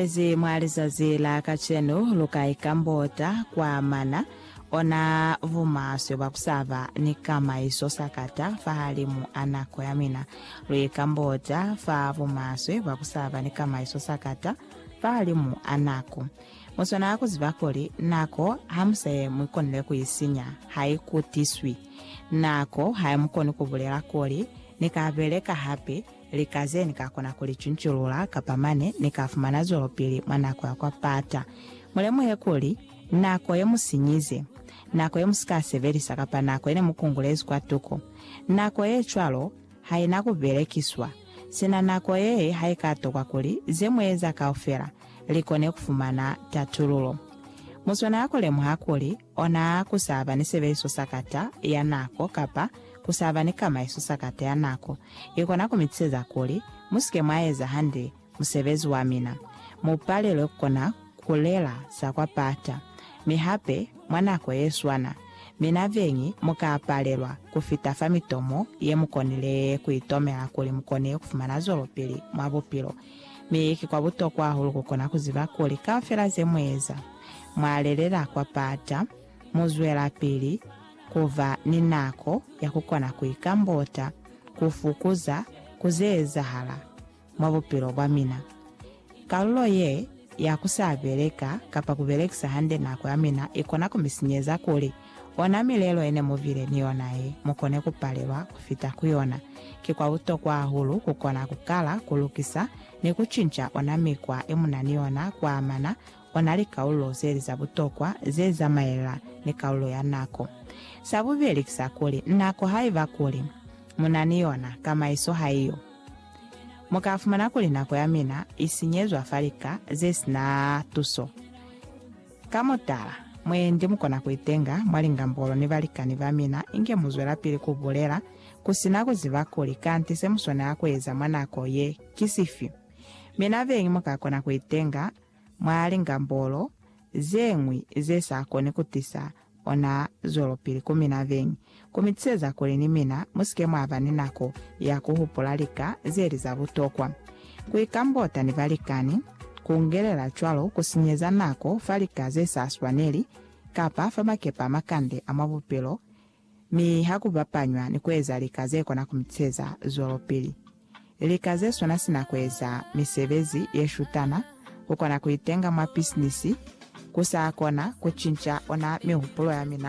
Pesi mwa lizazi la kacenu lu ka ikambota kwa mana ona bumaswe bwa ku sa ba ni kamaiso sakata fahalimu a nako ya mina. Lu ikambota fa bumaswe bwa ku sa ba ni kamaiso sakata fahalimu a nako. Mu swanela ku ziba kuli nako ha mu sa ye mu ikonile ku i sinya, ha i kutiswi. Nako ha i mu koni ku bulela kuli, Ni ka beleka hape, Lika ze ni ka kona ku li cunculula kapa mane ni ka fumana zwelopili mwa nako ya kwa pata. Mu lemuhe kuli, nako ye mu sinyize, nako ye mu si ka sebelisa kapa nako ye ne mu kungulezi kwa tuko, nako ye cwalo ha i na ku belekiswa. Sina nako ye ha i ka tokwa kuli ze mu eza kaufela li kone ku fumana tatululo. Mu swanela ku lemuha kuli, Ona ku sa ba ni sebeliso sa kata ya nako kapa ku sa ba ni kamaiso sa kata ya nako i kona ku mi tiseza kuli mu si ke mwa eza hande musebezi wa mina. Mu palelwe ku kona ku lela za kwa pata. Mi hape, mwa nako ye swana, mina beñi mu ka palelwa ku fita fa mitomo ye mu konile ku itomela kuli mu kone ku fumana zwelopili mwa bupilo Mi ki kwa butokwa hahulu ku kona ku ziba kuli kaufela ze mu eza, mwa lelela kwa pata, mu zwelapili ku ba ni nako ya ku kona ku ikambota, ku fukuza ku ze ezahala mwa bupilo bwa mina. Kalulo ye ya ku sa beleka kapa ku belekisa hande nako ya mina i kona ku mi sinyeza kuli Ona milelo ye ne mu bile ni yona ye mu kone ku palelwa ku fita ku yona. Ki kwa butokwa hahulu ku kona ku kala, ku lukisa, ni ku cinca ona mikwa ye mu na ni yona ku amana ona likaulo ze li za butokwa ze zamaelela ni kaulo ya nako. Sa bubeli ki sa kuli, nako haiba kuli mu na ni yona, kamaiso ha i yo. Mu ka fumana kuli nako ya mina i sinyezwa fa lika ze si na tuso. Ka mutala, mwendi mukona kuitenga mwa lingambolo ni balikani bamina inge muzwelapili kubulela kusina kuziba kuli kanti semuswanela kueza mwa nako ye ki sifi. Mina beñi mukakona kuitenga mwa lingambolo zeñwi zesakoni kutisa Ona zwelopili ku mina beñi, ku mi tiseza kuli ni mina mu si ke mwa ba ni nako ya ku hupula lika ze li za butokwa. Ku ikambota ni balikani, ku ngelela cwalo ku sinyeza nako fa lika ze sa swaneli kapa fa makepa a makande a mwa bupilo, mi ha ku bapanywa ni ku eza lika ze kona ku mi tiseza zwelopili. Lika ze swana sina ku eza misebezi ye shutana, ku kona ku itenga mwa pisinisi, ku sa kona ku cinca ona mihupulo ya mina